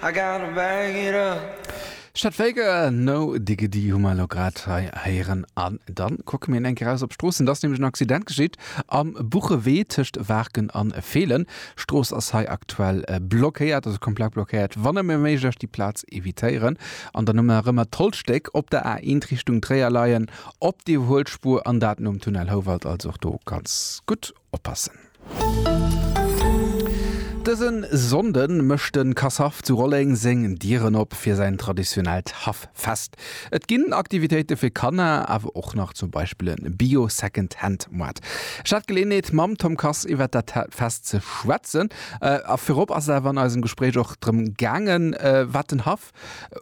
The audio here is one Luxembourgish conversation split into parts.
I gotta bag it up. Chet Faker, No Diggity hu mer elo grad hei héieren. An dann kucke mir eng Kéier raus op d'Stroossen. Et ass nämlech en Accident geschitt am Buchewee tëscht Waarken an Feelen. D'Strooss ass hei aktuell blockéiert, also komplett blockéiert. Wann nëmme méiglech déi Plaz evitéieren an dann ëmmer erëm d'Holzstéck op der A1 Richtung Tréier leien op déi Huelspur an dat nom Tunnel Houwald. Also och do ganz gutt oppassen. Dëse Sonnde mécht de Casshaff zu Rolleng seng Dieren op fir säin traditionellt Haff-Fest. Et ginn Aktivitéite fir Kanner, awer och nach zum Beispill e Bio-Second-Hand-Moart. Ech hat Geleeënheet mam Tom Kass iwwer dat Fest ze schwätzen a virop ass et awer an eisem Gespréich och drëm gaangen, wat den Haff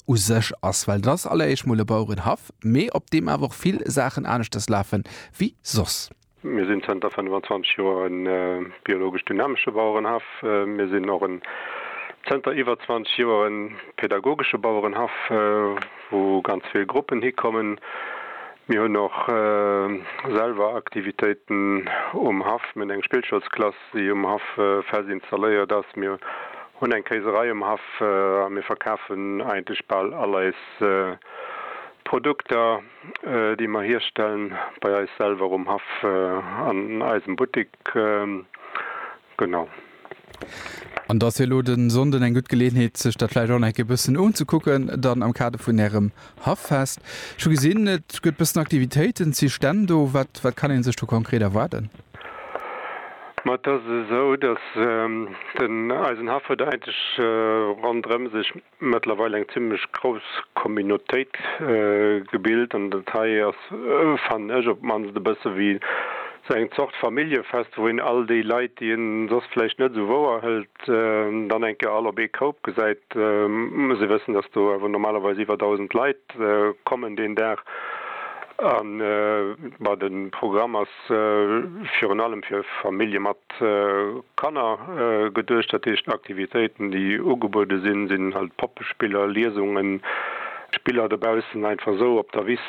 u sech ass. Well et ass alleréischt mol e Bauerenhaff, mee op deem awer och vill Saachen aneschters lafen, wéi soss. Mir sinn zënter 25 Joer e biologesch dynamesche Bauerenhaff. Mir sinn och en zënter iwwer 20 Joer e pädagogesche Bauerenhaff, wou ganz vill Gruppen hikommen. Mir hunn och selwer Aktivitéiten um Haff. Mir hunn eng Spillschoulsklass, déi um Haff fest installéiert ass. Mir hunn eng Kéiserei um Haff a mir verkafen eigentlech bal all eis Produkter. déi mer hierstellen bei eis selwer um Haff an eisem Buttik, genau. An da ass jo elo den Sonnden eng gutt Geleeënheet sech dat vläicht och nach eng Kéier bëssen unzekucken dann am Kader vun ärem Haffest. Ech hu gesinn et gëtt bëssen Aktivitéiten, et si Stänn do. Wat wat kann een sech do konkret erwaarden? Ma et ass esou, datt den eisen Haff huet eigentlech ronderëm sech mëttlerweil eng zimlech grouss Communautéit gebilt an dat hei ass, fannen ech, op d'mannst e bësse wéi esou eng Zort Familljefest, wou een all déi Leit, déi ee soss vläicht net esou wouer hëlt, dann eng Kéier all op ee Koup gesäit. Muss ee wëssen, dass do awer normalerweis iwwer 1.000 Leit kommen deen Dag an, bah, de Programm ass. virun allem fir Famillje mat Kanner geduecht. Dat heescht, Aktivitéiten, déi ugebuede sinn, sinn halt Poppespiller, Liesungen, Spiller dobaussen, einfach esou op der Wiss.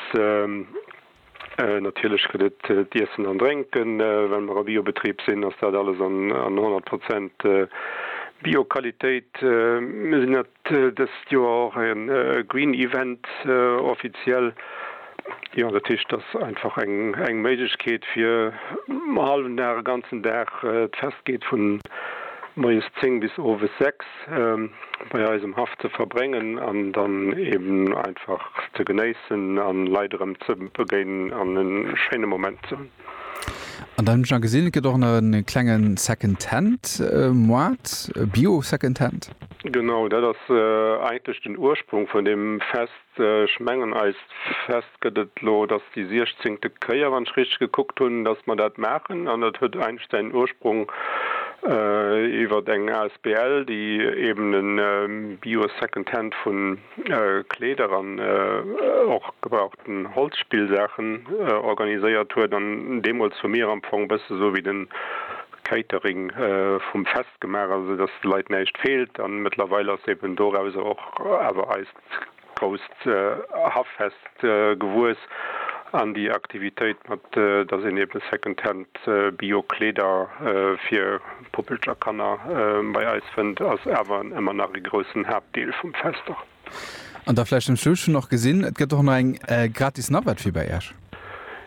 Natierlech gëtt et d'Iessen an Drénken. Well mer e Biobetrib sinn, ass dat alles an 100 Prozent Bioqualitéit. Mir sinn Dëst Joer och e Green Event offiziell. Jo, dat heescht ass einfach eng Méiglechkeet fir e hallwen Dag, e ganzen Dag. D'Fest geet vun moies 10 bis owes 6 bei eis um Haff ze verbréngen an dann eben einfach ze genéissen an Leit erëm ze begéinen an e schéine Moment ze hunn. An dann hunn ech nach gesinn, et gëtt och nach e klenge Secondhand-Moart, e Bio-Secondhand. Genau, dat ass eigentlech den Ursprung vun deem Fest. Ech mengen, eist Fest gëtt et elo, et ass déi siechzéngte Kéier, wann ech richteg gekuckt hunn, datt mer dat maachen. An dat huet eigentlech säin Ursprung iwwer eng asbl, déi eeben e Bio-Secondhand vun. Kleeder an och gebrauchten Holzspillsaachen organiséiert huet an deemools hu mir am Fong e bësse sou wéi de Catering vum Fest gemaach, also sou datt de Leit näischt feelt an mëttlerweil ass eben dorauser och awer eist grousst Haffest gewuess an déi Aktivitéit mat datt een eben Second-Hand Bio-Kleeder fir D'Poppelcher Kanner bei eis fënnt ass awer emmer nach ee groussen Haaptdeel vum Fest och. An da vläicht zum Schluss, ech hunn och gesinn, et gëtt och nach eng gratis Navette fir bei Esch.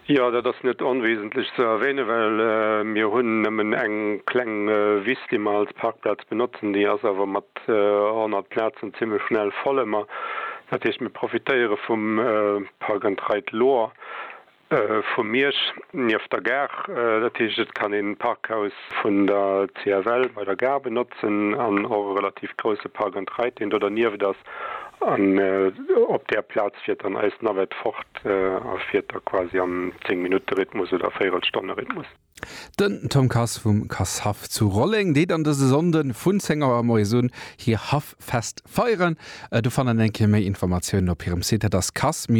Jo, dat ass net onwesentlech ze erwähnen, well mir hunn nëmmen eng kleng Wiss, déi mer als Parkplaz benotzen. Déi ass awer mat 100 Plazen zimlech schnell voll emmer. Dat heescht, mir profitéiere vum Park and Ride Lohr. Vu Miersch, nieft der Gare. Dat heescht, et kann een d'Parkhaus vun der CFL bei der Gare benotzen an och e relativ grousse Park and Ride, deen do dernieft ass. An op där Plaz fiert dann eis Navette fort a fiert da quasi am Zéng-Minutte-Rhythmus oder Véirelstonne-Rhythmus. Den Tom Kass vum Kasshaff zu Rolleng deet an dëse Sonnden vun 10 Auer moies un hir Haffest feieren. Do fannen eng Kéier méi Informatiounen op hirem Site, dat ass kass-haff.lu.